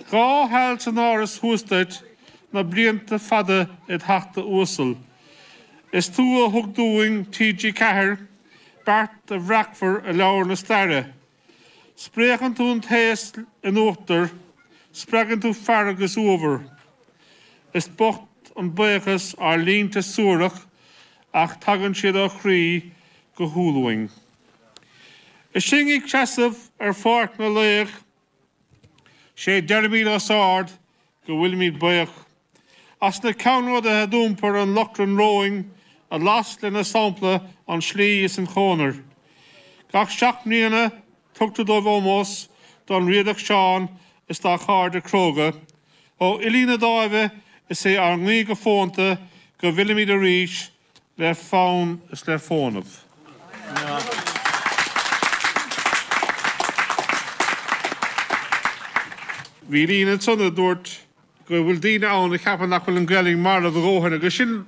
Dhá sheal san Áras thuas duit, na blianta fada id Theachta uasal. Is tú a thug dúinn TG Ceathair, beart a bhreacfar i leabhar na staire. Spréachann tú an t-aos in uachtar, spreagann tú fearg is uabhar. Is bocht an baochas ár línte suarach ach tagann siad ó chroí go humhal uainn. Is sinn ag seasamh ar pháirc na laoch, 'Sé deirimid os ard go bhfuilimid baoch, As na ceannródaithe a d'iompair an lóchrann romhainn, A las lena sampla an tslí is an chonair. Gach seacht mbliana tugtar dóibh ómós, Don Riadach Seán is dá chairde cróga, Ó Fhilí na Dáimhe is é ár nguí go fónta, Go bhfillimid arís le fonn is le fónamh. Bhí líne ansan a dúirt go bhfuil daoine ann a cheapann nach bhfuil an Ghaeilg marbh a dhóthain agus sin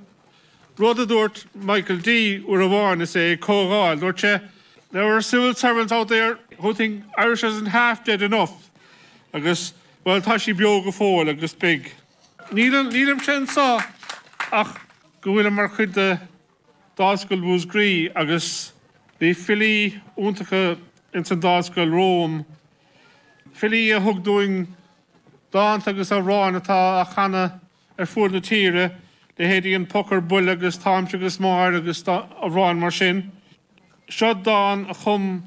rud a dúirt Michael D uair amháin is é ag comhdháil. Dúirt sé There are civil servants out there who think Irish isn't half dead enough agus, bhuel, tá sí beo go fóill agus beidh. Nílimse anso ach go bhfuilim mar chuid de Dháimhscoil Mhúsgraí agus bhí filí iontacha ins an Dáimhscoil romham, filí a thug dúinn dánta agus amhráin atá á chanadh ar fuaid na tíre, leithéidí An Poc ar Buile agus Táimse agus Máire agus amhráin mar sin. Seo dán a chum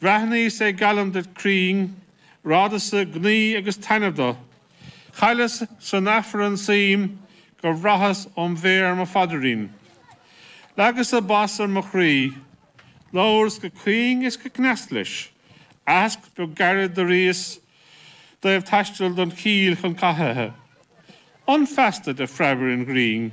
Bhreathnaíos an gallant go cruinn, radasa gnaoi agus taitneamh do. Chailleas san Aifreann suim gur bhraitheas óm mhéir mo phaidrín. Leagasa bas ar mo chroí. Labhras go caoin is go cneasta leis. Aitheasc beag gairid d'airíos dtaobh taisteal don chill chun cathuithe. An feasta de phreabaire an ghrinn.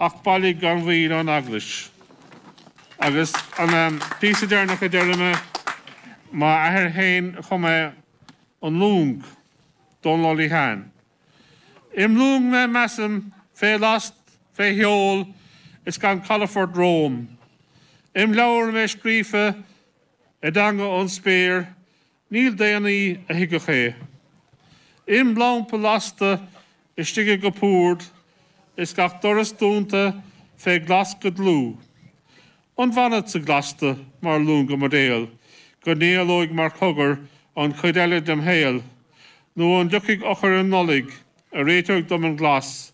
Ach bailigh gan mhoill ón Eaglais. Agus an píosa deireanach a déarfaidh mé, m'athair féin a chum é, An Long, Dónal Ó Liatháin. Im' long mé measaim, fé last, fé sheol, is gan calafort romham. Im' leabhar mé scríofa, i dteanga ón spéir, Níl daonnaí a thuigfeadh é. Im lampa lasta istigh i gcupúrd is gach doras dúnta fé ghlas go dlúth. An bhfanfadsa glasta mar luan go m'daol go n-éalóidh mar chogar an chuid eile dem shaol nó an dtiocfaidh eochair um Nollaig a réiteoidh dom an glas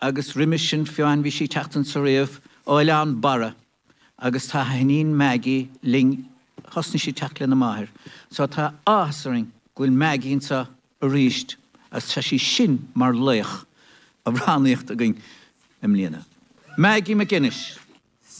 agus roimis sin féin bhí sí ag teacht anso riamh ó Oileán Barra agus tá a hiníon Maggie linn, thosnaigh sí ag teacht lena máthair so tá áthas orainn go bhfuil Maggie anso arís agus tá sí sin mar laoch amhránaíocht againn i mbliana. Maggie MacInnes.